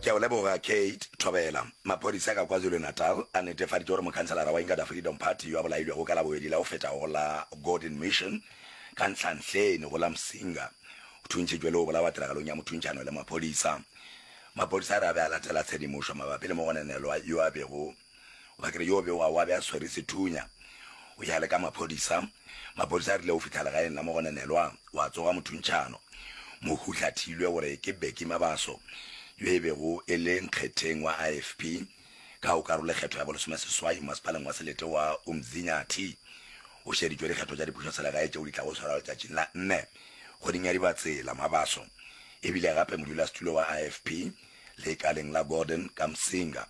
Ke a go leboga, Kate. Thobela. Maphodisa ka KwaZulu-Natal a netefaditše gore mokhanselara wa Inkatha Freedom Party yo a bolailwego ka Labobedi la go fetago go la Gordon Mission ka Nhlanhleni go la Msinga o thuntšhitšwe le go bolawa tiragalong ya mothuntšano le maphodisa. Maphodisa a re a be a latela tshedimošo mabapi le mogononelwa yo a bego O ba kere yo be wa wa be a swere sethunya. O ya le ka maphodisa. Maphodisa a rile o fihla legaeng la Mogonenelwa wa tsoga mothuntšhano. Mohuhla thilwe gore ke Becky Mabaso yo e bego e le nkgetheng wa IFP ka o karolo kgetho ya bolesome seswai mmasepaleng wa Selete wa Umzinyathi. O šeditšwe dikgetho tša dipušo selegae tšeo di tlago go swarwa letšatšing la nne kgweding ya Dibatsela. Mabaso e bile gape modulasetulo wa IFP leikaleng la Gordon Kamsinga.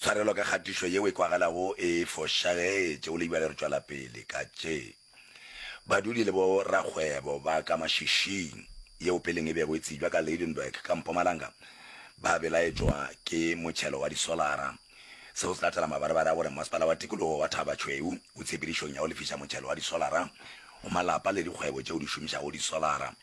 Tshwarelo ka kgatišo yeo e kwagalago e fošagetše go le bjale re tšwela pele ka tše badudi le bo rakgwebo ba ka mašišing yeo peleng e bego e tsebjwa ka Lydenburg ka Mpumalanga ba belaetšwa ke motšhelo wa disolara. Seo se latela mabarebare a gore Masepala wa Tikologo wa Thaba Tšhweu o tshepedišong ya go lefiša motšhelo wa disolara go malapa le dikgwebo tšeo di šomišago disolara.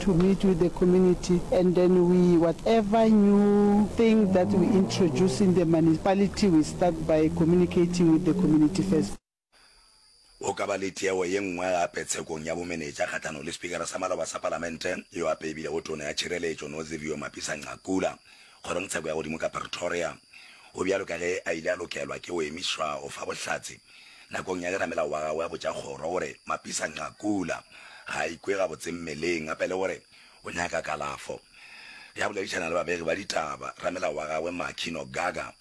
to meet with the community and then we whatever new thing that we introduce in the municipality we start by communicating with the community first. Go ka ba le tiego ye nngwe gape tshekong ya bomenetša kgahlanong le Sepikara sa Maloba sa Palamente yo a peibilego Tona ya Tšhireletšo Nozivio Mapisa-Nqakula Kgorongtsheko ya godimo ka Pretoria, go bjalo ka ge a ile a lokelwa ke go emišwa go fa bohlatse nakong ya leramelago wa gagwe a botša kgoro gore Mapisang a kula, ga a ikwe gabotse mmeleng gape le gore o nyaka kalafo. Ge a boledišana le babegi ba ditaba, ramelago wa gagwe Makhi Nogaga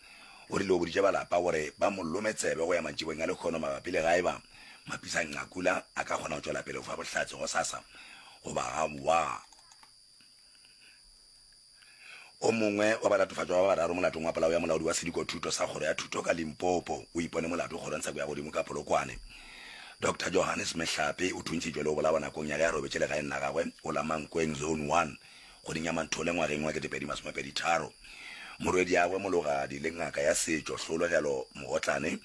o rile o boditše ba lapa gore ba mo lome tsebe go ya mantšibong a lekgono mabapi le gaeba Mapisang a kula a ka kgona go tšwela pele go fa bohlatse gosasa goba gaowa. O mongwe wa balatofatšwa ba bararo molatong wa polao ya molaodi wa sedikothuto sa kgoro ya thuto ka Limpopo o ipone molato kgorong sa Kuyagodimo ka Polokwane. Doctor Johannes Mehlape o thuntšitšwe le go bolawa nakong ya ge a robetše legaeng la gagwe go la Mankweng Zone One kgweding ya Manthole ngwageng wa 2023. Morwediagwe Mologadi le ngaka ya setšo Hlologelo Mogotlane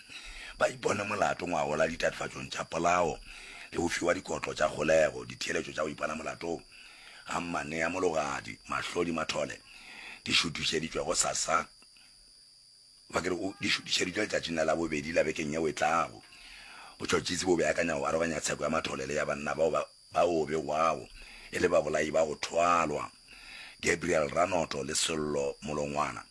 ba ipone molato ngwagola ditatofatšong tša polao le go fiwa dikotlo tša kgolego, ditheeletšo tša go ipona molatong. ga mmanea mologadi mahlodi mathole di šutišeditšwe go sasa ba kere o di šutišeditšwe letšatšing la labobedi la bekeng yeo e tlago botšhotšhisi bo beakanya go aroganya tsheko ya mathole le ya banna bao ba ba o begwago e le babolai ba go thwalwa Gabriel Ranoto le Sello Molongwana.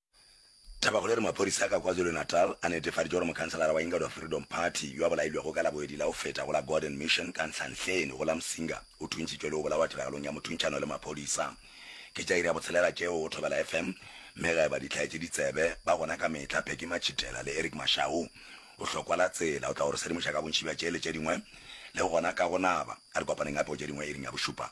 Tabakgolo e re maphodisa a ka KwaZulu-Natal a netefaditše gore mokhanselara wa Ingledorp Freedom Party yo a bolailwego ka Laboedi la go feta go la Gordon Mission ka Nhlanhleni go la Msinga o thuntšitšwe le go bolawa tiragalong ya mothuntšano le maphodisa. Ke tša iri ya botshelela tšeo go Thobela FM mme ga e ba ditlhaetšeditsebe ba gona ka mehla Peggy Matšhitela le Eric Mashau. Bohlokwa la tsela o tla go re sedimoša ka bontši bja tše le tše dingwe le gona ka go naba. A re kopaneng gape go tše dingwe iring ya bošupa.